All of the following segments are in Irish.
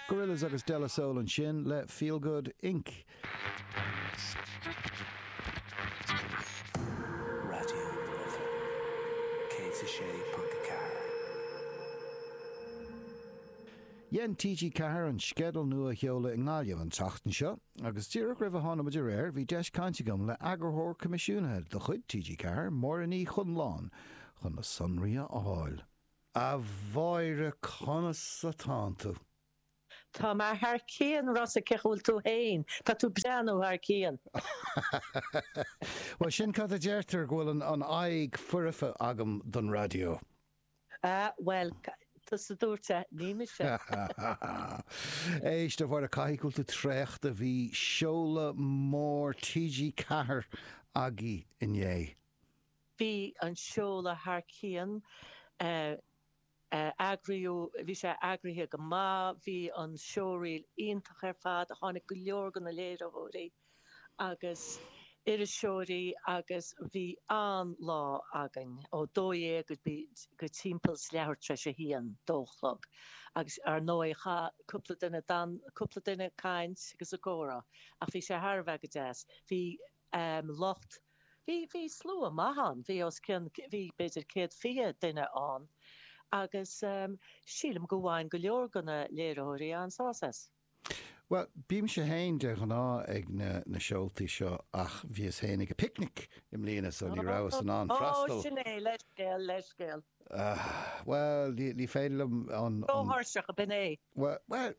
Gorillaz agus De La Soul ansin le Feel Good Inc. Dhein TG4 an sceideal nua a sheoladh i nGaillimh an tseachtain seo agus díreach roimh a tháinig muid ar aer bhí deis caint agam le eagarthóir coimisiúnaithe de chuid TG4, Máire Ní Chonláin, chun na sonraí a fháil. A Mháire conas atán tú? Tá mé thar cionn, Rossa cén chaoi a bhfuil tú féin? Tá tú breá nó thar cionn? Bhuel sin cad a deirtear, go bhfuil an aghaidh foirfe agam don raidió. A bhuel, tusa a dúirt é, ní mise. Éist a Mháire, caithfidh go bhfuil tú traochta, bhí seoladh mór TG4 agaibh inné. Bhí an seoladh thar cionn, bhí sé eagraithe go maith, bhí an showreel iontach ar fad, tháinig go leor go na léiritheoirí agus iriseoirí agus bhí an-lá againn, ó dó dhéag go timpeall is leathuair tar éis a haon, dó a chlog. Agus, ar ndóigh, chaith cúpla duine, d'fhan cúpla duine ag caint agus ag comhrá ach bhí sé thar a bheith go deas. Bhí an lucht. Bhí, bhí slua maith ann, bhí os cionn, bhí b'fhéidir céad fiche duine ann agus sílim go bhain go leor go na léiritheoirí an-sás as. Bhuel, bímse féin de ghnáth ag na, na seoltaí seo ach bhíos féin ag an bPicnic i mbliana so ní rabhas in ann freastal. Ó, sin é, leithscéal, leithscéal. Bhuel, ní, ní féidir liom an, an. Ró-thuirseach, b'in é. Bhuel, bhuel,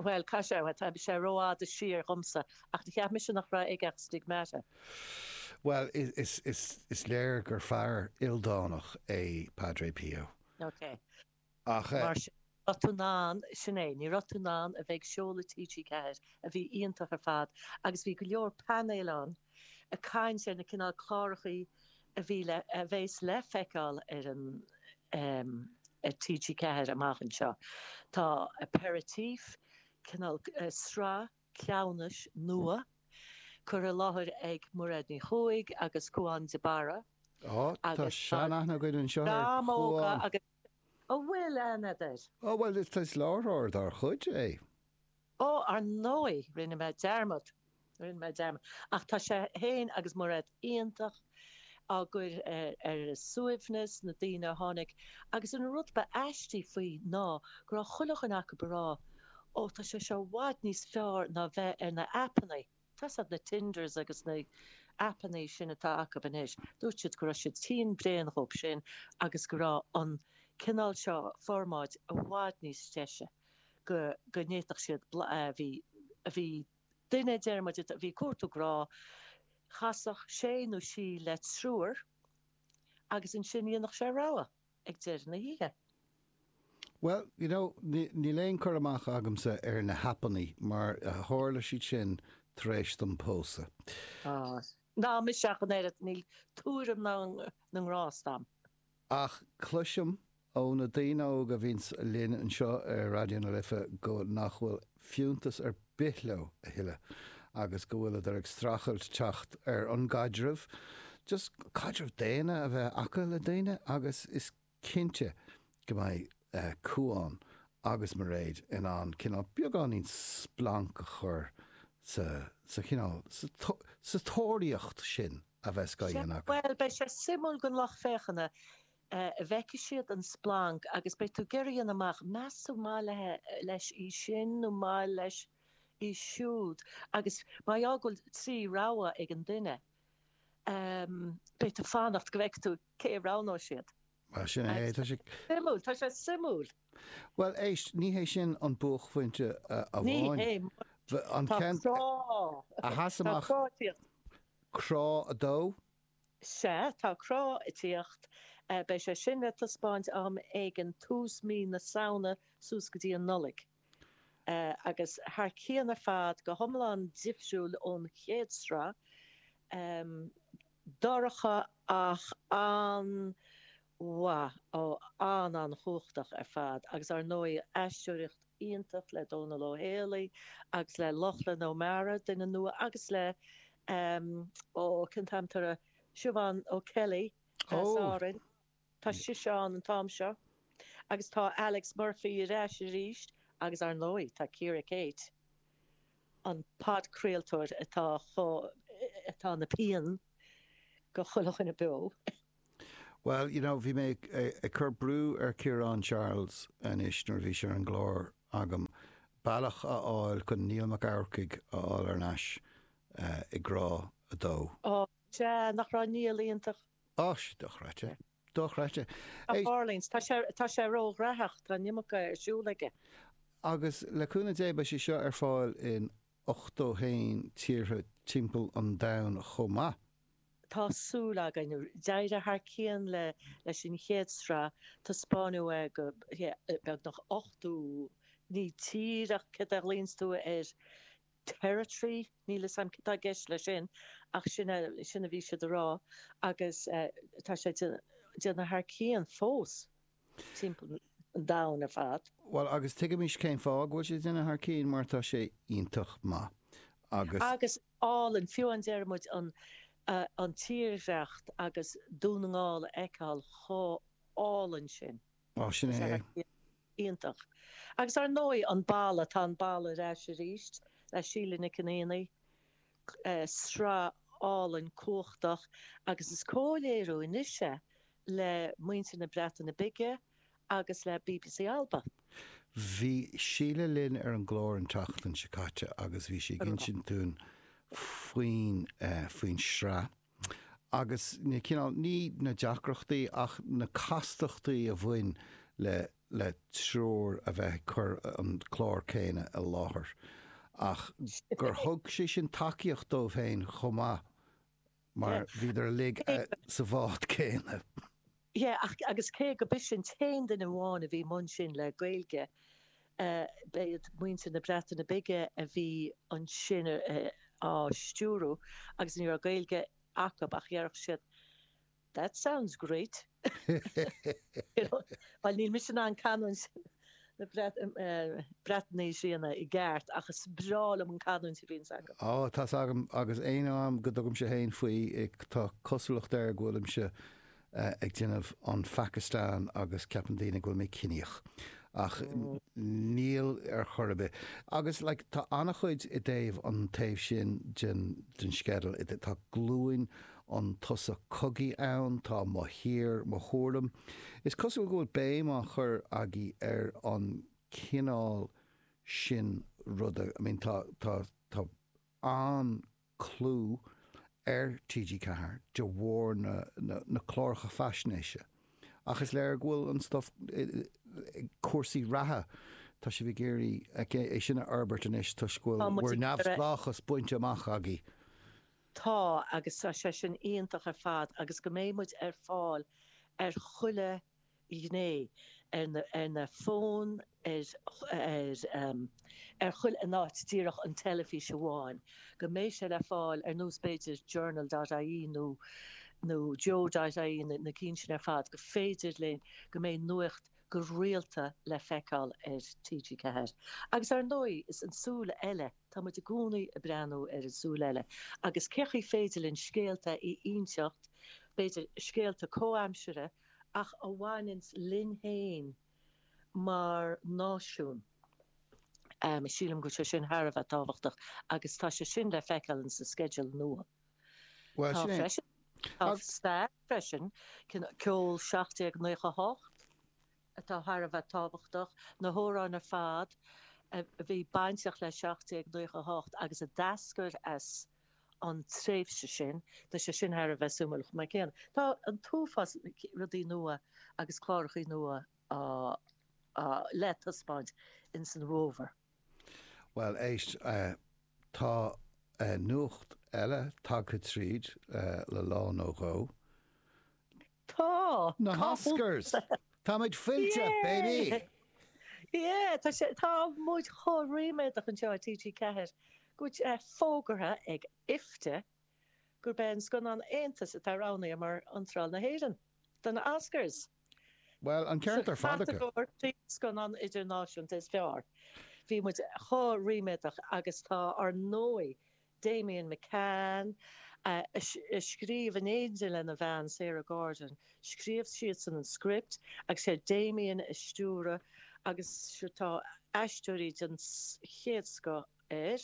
Bhuel, caithfidh sé, tá sé rófhada siar dhomsa, ach nár cheap mise nach raibh aige ach stigmata. Bhuel, is léir gur fear ildánach é Padre Pio. Ok. Ach. Mar sin, ní raibh tú in ann, sin é, ní raibh tú in ann a bheith ag seoladh TG4, a bhí iontach ar fad, agus bhí go leor painéil ann, ag caint ar na cineál cláracha a bhí le, a bheas le feiceáil ar an, ar TG4 amach anseo. Tá Aperitif, cineál, sraith cleamhnais nua, curtha i láthair ag Mairéad Ní Chuaig agus Cúán de Barra agus tá, Tá seanaithne againn anseo ar Raidió na Life ar Chúán. agus, a bhfuil aithne air? Ó bhuel, is, is láithreoir dár chuid é. Ó, ar ndóigh, rinne mé dearmad, rinne mé dearmad, ach tá sé féin agus Mairéad iontach á gcur ar a suaimhneas, na daoine a tháinig, agus an rud ba aistí faoi ná go raibh chuile dhuine acu ag rá, 'Ó, tá sé seo i bhfad níos fearr ná bheith ar na haipeannaí'. Tá a fhios agat na Tinders agus na haipeanna sin atá acu anois, dúirt siad go raibh siad tinn bréan dhóibh sin agus go raibh an cineál seo formáid i bhfad níos deise go bhféadfadh siad bhí, bhí duine déarfaidh muid a bhí ag cuartú grá, chasfadh sé nó sí le triúr agus ansin dhéanfadh sé rogha. ag deireadh na hoíche. Bhuel, you know, níl aon chur amach agamsa ar na haipeanna mar tharla siad sin tar éis dom pósadh. Ná mise ach an oiread, níl tuairim na ngrást a'm. Ach cloisim ó na daoine óga a bhíonns linn anseo ar Raidió na Life go nach bhfuil fiúntas ar bith leo a thuilleadh agus go bhfuileadar ag streachailt teacht ar an gcaidreamh, just caidreamh daonna a bheith acu le daoine agus is cinnte go mbeidh Cuán agus Mairéad in ann cineál beagáinín splanc a chur sa, sa chineál, sa tóraíocht sin a bheas á dhéanamh acu. Bhuel, beidh sé suimiúil don lucht féachana. a bhfeicfidh siad an splanc agus beidh tú ag iarraidh a dhéanamh amach, meas tú maith leis í sin nó maith leis í siúd agus mar go bhfuil trí rogha ag an duine, beidh tú ag fanacht go bhfeice tú cé a roghnóidh siad. Bhuel, sin é, tá sé. suimiúil, tá sé suimiúil. Bhuel, éist, ní hé sin an buaicphointe amháin. Ní hé. Tá Crá. A sheas amach. Tá Crá fiat. Crá a dó. Sea, tá Crá ag tíocht. Beidh sé sin le taispeáint am éigin tús mí na Samhna suas go dtí an Nollaig. Agus thar cionn ar fad, go hiomlán difriúil ón chéad sraith. Dorcha ach an, mhaith, á, an-an-chumhachtach ar fad agus ár ndóigh aisteoireacht iontach le Dónall Ó Héalaí agus le Lochlann Ó Mearáin, duine nua, agus le ehm ó cén t-ainm atá ar Siobhán O'Kelly as Ó! Árainn, tá sise ann an t-am seo agus tá Alex Murphy ar ais arís agus ár ndóigh tá Ciara-Kate an podchraoltóir atá chomh atá ina pian do chuile dhuine beo. Bhuel, you know, bhí mé ag cur brú ar Chiarán Charles anois nuair a bhí sé ar an gclár agam, bealach a fháil chun Niall Mac Eachmharcaigh a fháil ar ais i gCrá 2. Ó, sea, nach raibh Niall iontach? Ó, sea, dochreidte, dochreidte. Tá Farley's, tá sé, tá sé ró-ghraitheach, tá an iomarca ar siúl aige. Agus le cúnamh Dé, beidh sé seo ar fáil in 81 tíortha timpeall an domhain chomh maith. tá súil againn. D'éirigh thar cionn leis an chéad sraith, taispeáineadh é go beagnach 80, ní tír ach cad é a ghlaonns tú air? territory? Níl 'fhios a'm cad tá i gceist leis sin ach sin é, sin a bhí siad a rá agus tá sé déanamh thar cionn fós. timpeall an domhain ar fad. Bhuel, agus tuigimís cén fáth go bhfuil sé déanamh thar cionn, mar tá sé iontach maith agus. agus álainn, fiú abraimid an an tírdhreacht agus Dún na nGall a fheiceáil chomh álainn sin. Á, sin é. iontach. Agus ar ndóigh, an balla, tá an balla ar ais arís le Síle Nic an Aonaigh. sraith álainn cumhachtach agus is comhléiriú anois é le muintir na Breataine Bige agus le bbc Alba. Bhí Síle linn ar an gclár an tseachtain seo caite agus bhí sí ag insint dúinn faoin faoin sraith. agus na cineál, ní na deacrachtaí, ach na castachtaí a bhain le le triúr a bheith ag cur an clár céanna i láthair ach gur thug sé sin tacaíocht dóibh féin chomh maith mar bhíodar uilig sa bhád céanna. Sea agus cé go b'ise an t-aon duine amháin a bhí mbun sin le Gaeilge, b'iad muintir na Breataine Bige a bhí ansin á stiúrú agus ní raibh Gaeilge acub ach déarfadh siad That sounds great! Bhuel níl mise in ann canúint. na Breataine a dhéanamh i gceart ach is breá liom an canúint a bhíonns acu. Á, tá's agam, agus aon am go dtugaimse fhéin faoi, tá cosúlacht air go bhfuilimse ag déanamh an Phakistan agus ceapann daoine go bhfuil mé ciníoch, ach níl ar chor ar bith. Agus, like, tá an-chuid i dtaobh an taobh sin de den sceideal, tá glúin an tSos Cogaidh ann tá mo thír mo thuairim. Is cosúil go bhfuil béim á chur agaibh ar an cineál sin ruda. I mean tá, tá, tá an-clú ar TG Ceathair de bharr na, na, na cláracha faisnéise ach is léir go bhfuil an stuif cúrsaí reatha, tá sibh ag iarraidh é sin a fhorbairt anois toisc go bhfuil bhur neamhspleáchas bainte amach agaibh. Tá, agus tá sé sin iontach ar fad agus go mbeidh muid ar fáil ar chuile ghné, ar na fóin, ar, ar, ar chuile, ní díreach an teilifís amháin, go mbeidh sé le fáil ar nós b'fhéidir Journal dot ie nó, nó joe dot ie na, na cinn sin ar fad, go féidir linn, go mbeidh nuacht go rialta le feiceáil ar TG4. Agus ar ndóigh is an súil eile. Tá muid i gcónaí ag breathnú ar an 'Súil Eile' agus cén chaoi ar féidir linn scéalta a inseacht, b'fhéidir scéalta comhaimseartha ach a bhaineanns linn féin mar náisiún. Sílim go bhfuil sé sin thar a bheith tábhachtach agus tá sé sin le feiceáil in sa sceideal nua. Tá freisin, tá stair freisin, ceol 1798, atá thar a bheith tábhachtach, na hamhráin ar fad a bhí bainteach le 1798 agus a d'eascair as an tréimhse sin, tá sé sin thar a bheith suimiúil chomh maith céanna. Tá an t-uafás rudaí nua agus clárachaí nua le taispeáint ins an bhFómhar. Bhuel éist, tá nuacht eile tagtha tríd le lá nó dhó. Tá! Táimid fillte, baby! Yay! Yeah, tá sé tá muid chomh ríméadach anseo i TG4 go bhfuil sé fógartha ag IFTA gurb é an scannán Aontas atá roghnaithe mar iontráil na hÉireann do na Oscars, sa chatagóir Scannán Idirnáisiúnta is Fearr. Bhí muid chomh ríméadach agus tá, ar ndóigh, Damian McCann, a scríobh in éindí lena bhean Sarah Gordon. Scríobh siadsan an script agus sé Damian a stiúraigh agus tá aisteoirí den chéad scoth ann,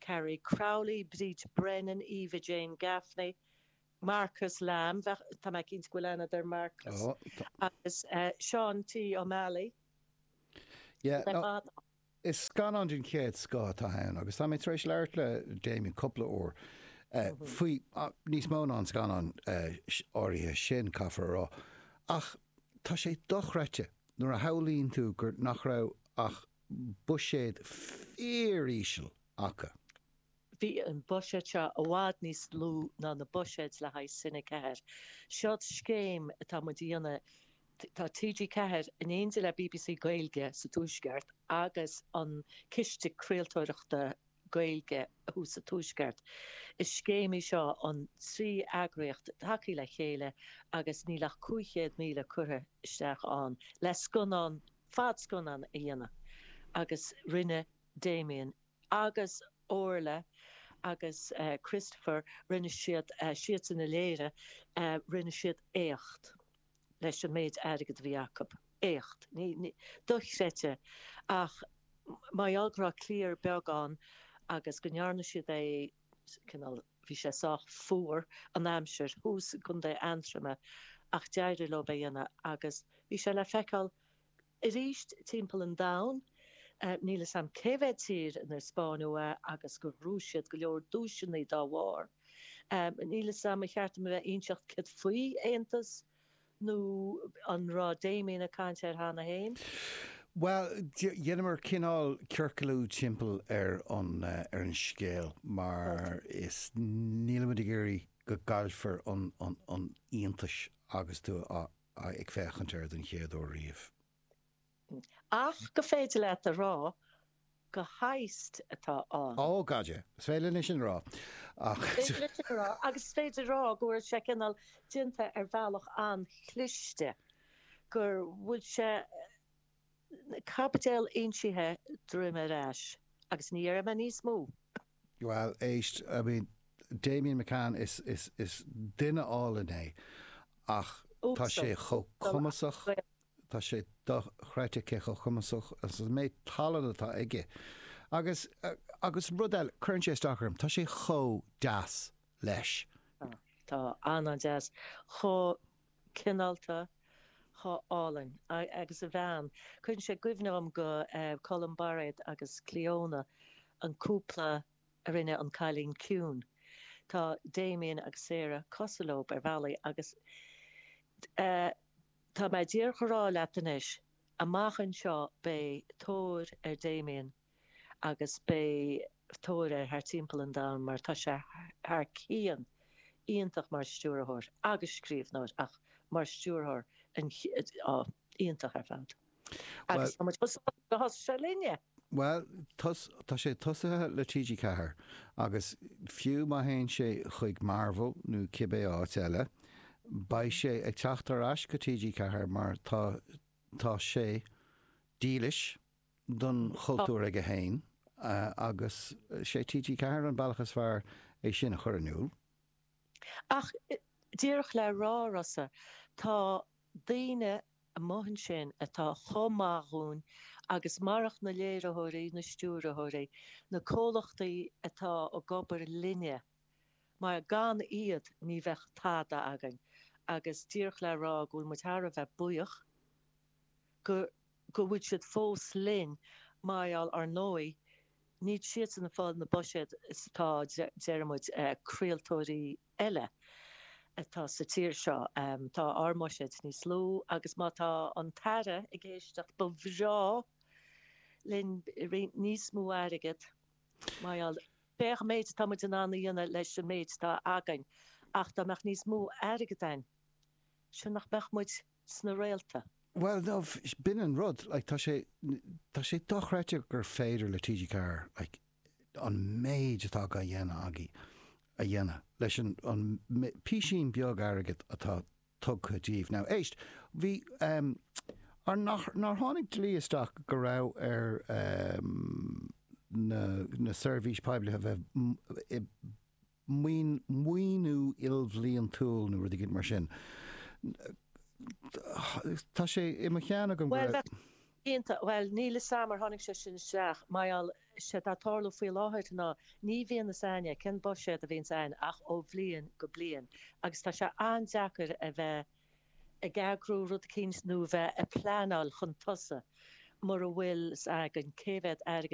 Carrie Crowley, Bríd Brennan, Eva Jane Gaffney, Marcus Lamb, tá mé cinnte go bhfuil aithne agat ar Marcus, agus Sean T Ó Meallaigh. Is scannán den chéad scoth atá ann agus tá mé tar éis labhairt le Damien cúpla uair faoi, níos mó ná faoin scannán áirithe sin, caithfear a rá, ach tá sé dochreidte nuair a shamhlaíonn tú gur, nach raibh ach buiséad fíoríseal acu. Bhí an buiséad seo i bhfad níos lú ná na buiséid le haghaidh Cine 4. Seod scéim atá muid a dhéanamh, tá TG4 in éindi le bbc Gaeilge sa Tuaisceart agus an Ciste Craoltóireachta Gaeilge thuas sa Tuaisceart. Is scéim í seo an trí eagraíocht tagtha le chéile agus níl ach 500,000 curtha isteach ann le scannán, fad scannán a dhéanamh agus rinne Damien. agus Orla agus Christopher, rinne siad, siadsan a léirigh, rinne siad éacht leis an méid airgead a bhí acu. Éacht dochreidte. Ach mar gheall go raibh cliar beag ann agus go ndearna siad é cineál, bhí sé sách fuar an aimsir, thuas i gContae Aontroma, ach d'éirigh leo é a dhéanamh agus bhí sé le feiceáil arís timpeall an domhain. Níl 'fhios a'm cé mhéad tír inar spáin muid é agus gur bhuaigh siad go leor duaiseanna dá bharr. Níl 'fhios a'm, ba cheart dom a bheith a' inseacht céard faoi Aontas nó an raibh Damien a' caint air cheana féin? Bhuel, dheineamar cineál ciorcalú timpeall ar an, ar an scéal mar is, nílimid ag iarraidh go gcaillfear an, an, an iontais agus tú a, a. ag féachaint air den chéad uair riamh. Ach gur féidir leat a rá gur heist atá ann. Ó, gaid! Is féidir linn sin a rá. Ach. Is féidir linn sin a rá. Agus is féidir a rá go bhfuil sé cineál déanta ar bhealach an-chliste, go bhfuil sé. Caibidil insithe droim ar ais. Agus ní dhéarfaidh mé níos mó. Bhuel, éist, I mean, Damien McCann, is, is, is duine álainn é, ach tá sé Uasal. chomh Uasal ach cumasach, Gael. tá sé dochreidte cé chomh cumasach agus an méid tallann atá aige. Agus, agus rud eile, cuireann sé isteach orm, tá sé chomh deas leis. Tá, tá an-an-deas. Chomh. cineálta, chomh hálainn agus a bhean. Cuireann sé i gcuimhne dhom go, eh, Colm Bairéad agus Cleona, an cúpla a rinne An Cailín Ciúin. Tá Damien agus Sarah cosúil leob ar bhealaí agus, eh, tá mé díreach a' rá leat anois, amach anseo beidh tóir ar Damien, agus beidh tóir air thart timpeall an domhain mar tá sé thar cionn iontach mar stiúrthóir agus scríobhnóir ach mar stiúrthóir an-iontach ar fad agus tá muid chomh sásta gur thosaigh sé linne! Bhuel, tá sé tosaithe le TG Ceathair agus fiú má théann sé chuig Marvel nó cibé áit eile, beidh sé ag teacht ar ais go TG Ceathair mar tá sé dílis don chultúr aige féin agus sé TG Ceathair an bealach is fearr é sin a chur in iúl. Ach díreach le rá, a Rossa, tá daoine amuigh ansin atá chomh maith dhúinn agus marach na léiritheoirí, na stiúrthóirí, na comhlachtaí atá ag obair linne, mar gan iad ní bheadh tada againn agus díreach le rá go bhfuil muid thar a bheith buíoch. go bhfuil siad fós linn, mar gheall, ar ndóigh, níl siadsan ag fáil na buiséid is atá, deir muid, craoltóirí eile atá sa tír seo. Tá ár mbuiséid níos lú agus má tá an tAire ag éisteacht, ba bhreá linn roinnt níos mó airgead, mar gheall, féach an méid atá muid in ann a dhéanamh leis an méid atá againn ach dá mbeadh níos mó airgead ann, céard nach mbeadh muid. sna réalta. Bhuel no, b'in an rud, like, tá sé, tá sé dochreidte gur féidir le TG4, like, an méid atá á dhéanamh agaibh a dhéanamh leis an bpísín beag airgid atá tugtha daoibh. Now, éist, bhí, ehm, ar nach, nár tháinig dlí isteach go raibh ar, ehm, na, na seirbhísí poiblí a bheith i maoiniú ilbhliantúil nó rud eicínt mar sin. Tá sé i mo cheann agam go raibh. Cinnte, bhuel, níl 'fhios a'm ar tháinig sé sin isteach mar gheall, sé atá ag tarlú faoi láthair ná ní bhíonn 'fhios a'inn cén buiséad a bhíonns a'inne ach ó bhliain go bliain agus tá sé an-deacair a bheith ag eagrú rud eicínt nó bheith a' pleanáil chun tosaigh mura bhfuil 's againn cé mhéad airgead